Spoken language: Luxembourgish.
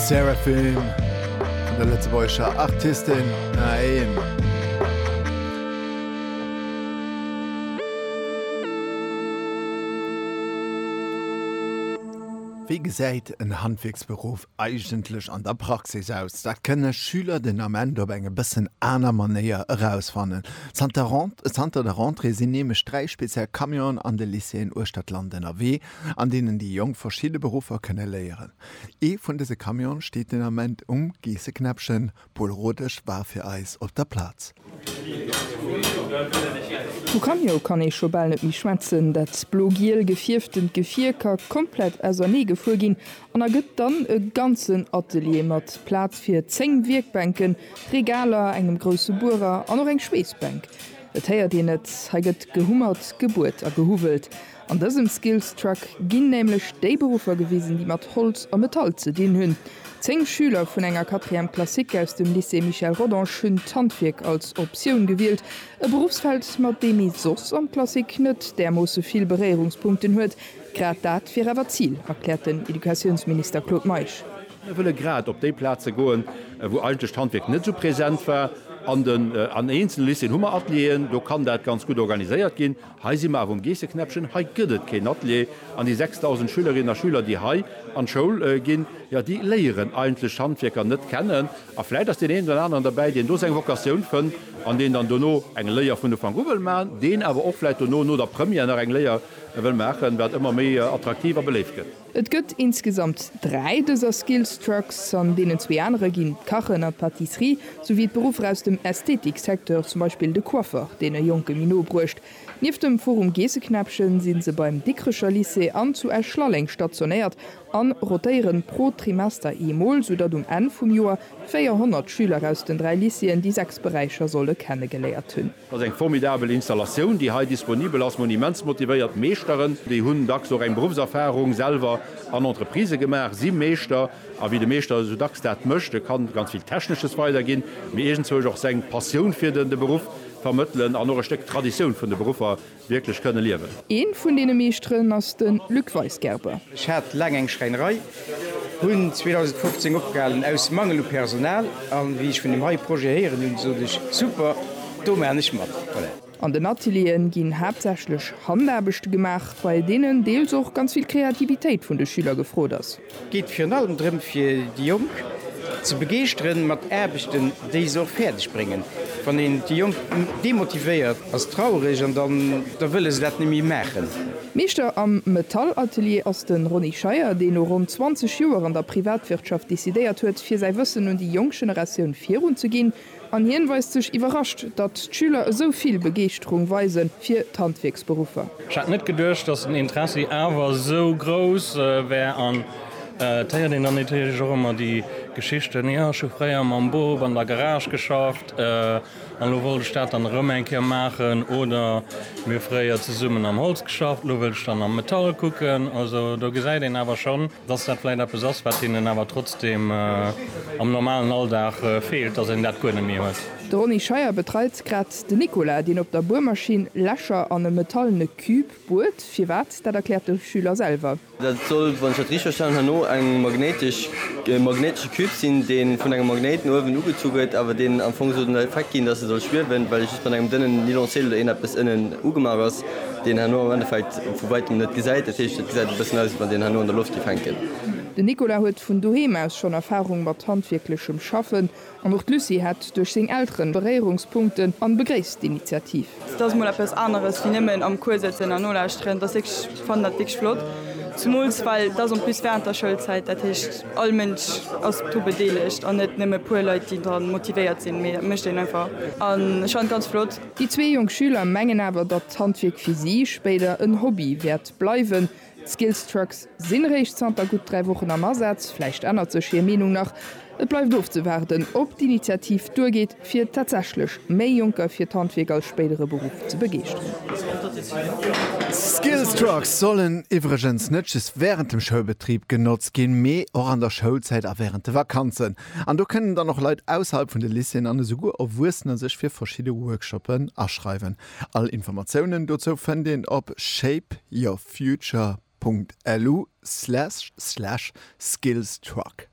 Seraphim, vun der lëtzebuergescher Artistin Naim. Wéi gesäit en Handwierksberuff eigentlech an der Praxis aus? Dat kënne Schüler den Ament op eng e bëssen aner Manéier erausfannen. Zanter der Rentrée sinn nämlech dräi speziell Camionen an de Lycéeën uechter d'Land ënnerwee, an deenen déi Jonk verschidde Beruffer kënne léieren. Ee vun dëse Camione steet den Ament um Geesseknäppchen. D'Paule Rodesch war fir eis op der Plaz. Vu Camio kann ee scho bal net méi schwätzen. Dat blo-giel gefierftent Gefier ka komplett ausernee gefuer ginn an ergëtt dann e ganzen Atelier mat Plaz fir 10 Wierkbänken, Regaler, engem grousse Buerer an och eng Schweessbänk. Et héiert een et, hei gëtt gehummert, gebuert a gehuwwelt. An dësem Skills Truck ginn nämlech déi Beruffer gewisen, déi mat Holz a Metall ze dinn hunn. Zéng Schüler vun enger Quatrième classique aus dem Lycée Michel Rodange hunn d'Handwierk als Optioun gewielt, e Berufsfeld, mat deem ee soss an d'Klassik net därmoosse vill Beréierungspunkten huet. Grad dat wier awer d'Zil, erkläert den Educatiounsminister Claude Meisch. Mir wëlle grad op déi Plaze goen, wou eigentlech d'Handwierk net esou present war. An eenzele Lycéeën hu mer Atelieren, do kann dat ganz gutt organiséiert ginn. Hei si mer awer um Geesseknäppchen, hei gëtt et keen Atelier an déi 6.000 Schülerinnen a Schüler, déi hei an d'Schoul ginn, jo, déi léieren eigentlech d'Handwierker net kennen. A vläicht ass deen een oder aneren derbäi, deen do seng Vocatioun fënnt an deen dann dono eng Léier vun Ufank u wëll maachen, deen awer och vläicht dono, no der Première, nach eng Léier wëll maachen, wat ëmmer méi attraktiv a beléift gëtt. Et gëtt insgesamt dräi dëser Skills Trucks, an deenen zwee anere ginn d'Kachen an d'Pâtisserie, souwéi d'Beruffer aus dem Ästhetik-Secteur, zum Beispill de Coiffeur, deen e Jonke méi no bruecht. Nieft dem Forum Geesseknäppchen sinn se beim Dikkrecher Lycée an zu Esch-Lalleng stationéiert a rotéieren pro Trimester eemol, soudatt um Enn vum Joer 400 Schüler aus den dräi Lycéeën déi sechs Beräicher solle kennegeléiert hunn. Dat ass eng formidabel Installatioun, déi hei disponibel ass. Monimentsmotivéiert Meeschteren, déi hunn dacks och eng Beruffserfarung selwer an Entreprisë gemaach, si Meeschter. A wéi de Meeschter esou dacks dat mécht, e kann ganz vill Technesches weiderginn, mee iergendzwousch och seng Passioun fir de Beruff vermëttelen an och e Stéck d'Traditioun vun de Beruffer Wierklech kënne liewen. Een vun deene Meeschteren ass den Luc Weisgerber. Ech hat laang eng Schräinerei, hunn 2015 opgehalen aus Mangel u Personal an wéi ech vun dem hei Projet héieren hunn, sot ech, super, do maachen ech mat. An den Atelieren ginn haaptsächlech Handaarbechte gemaach, bei deenen deels och ganz vill Kreativitéit vun de Schüler gefrot ass. Et geet virun allem drëm fir déi Jonk ze begeeschtere mat Aarbechten, déi se och fäerdeg bréngen. Wann een déi Jonk demotivéiert, ass traureg an dann da wëlle se dat net méi maachen. Meeschter am Metallatelier ass de Ronny Scheier, deen no ronn 20 Joer an der Privatwirtschaft decidéiert huet, fir säi Wëssen un déi jonk Generatioun virunzeginn. An hien weist sech iwwerrascht, datt d'Schüler esou vill Begeeschterung weise fir d'Handwierksberuffer. Ech hätt net geduecht, datt den Interessi awer esou grouss wär. An et héiert een dann natierlech och ëmmer déi Geschichten, Jo, ech hu fréier mam Bop an der Garage geschafft an elo wollt ech dat dann erëm eng Kéier maachen. Oder, Mir hu fréier zesummen am Holz geschafft, elo wëll ech dann am Metall kucken. Also do gesäit een awer schonn, dass dat vläicht eppes ass, wat hinnen awer trotzdeem am normalen Alldag feelt, dass een dat guer net méi huet. De Ronny Scheier betreit grad den Nicolas, deen op der Buermaschinn Lächer an e metallene Cube buert. Firwat, dat erkläert de Schüler selwer. Dat soll, wann ech dat richteg verstanen hunn, no e magnéitesche Cube sinn, dee vun engem Magnéit no uewen ugezu gëtt, awer deen am Fong soll den Effekt ginn, dass e soll schwiewen, well e just mat engem dënnen Nylonseel oder eeneppes ënnen ugemaach ass. deen herno am Endeffekt vu wäitem net gesäit, dat heescht et gesäit e bëssen aus, wann deen herno an der Loft géif hänken. Den Nicolas huet vun doheem aus schonn Erfarung mat handwierklechem Schaffen an och d'Lucie hätt duerch seng Elteren Beréierungspunkten an begréisst d'Initiativ. Et ass mol eppes aneres wéi nëmmen am Cours sëtzen an nolauschteren, et ass wierklech, ech fannen dat wierklech flott, zumools well et ass en plus während der Schoulzäit, dat heescht all Mënsch ass dru bedeelegt an net nëmme e puer Leit déi dran motivéiert sinn, mee dat mécht een einfach an ech fannen et ganz flott. Déi zwee jonk Schüler mengen awer, datt d'Handwierk fir si spéider en Hobby wäert bleiwen. D'Skills Trucks sinn réischt zanter gutt dräi Wochen am Asaz. Vläicht ännert sech hir Meenung nach. Et bleift ofzewaarden, ob d'Initiativ duergeet, fir tatsächlech méi Jonker fir d'Handwierk als spéidere Beruff ze begeeschteren. D'Skills Trucks sollen iwwregens net just wärend dem Schoulbetrib genotzt ginn, mee och an der Schoulzäit a wärend de Vakanzen. An do kënnen dann och Leit ausserhalb vun de Lycéeën an esouguer Erwuessener sech fir verschidde Workshoppen aschreiwen. All Informatiounen dozou fënnt een op shapeyourfuture.lu slash skillstruck.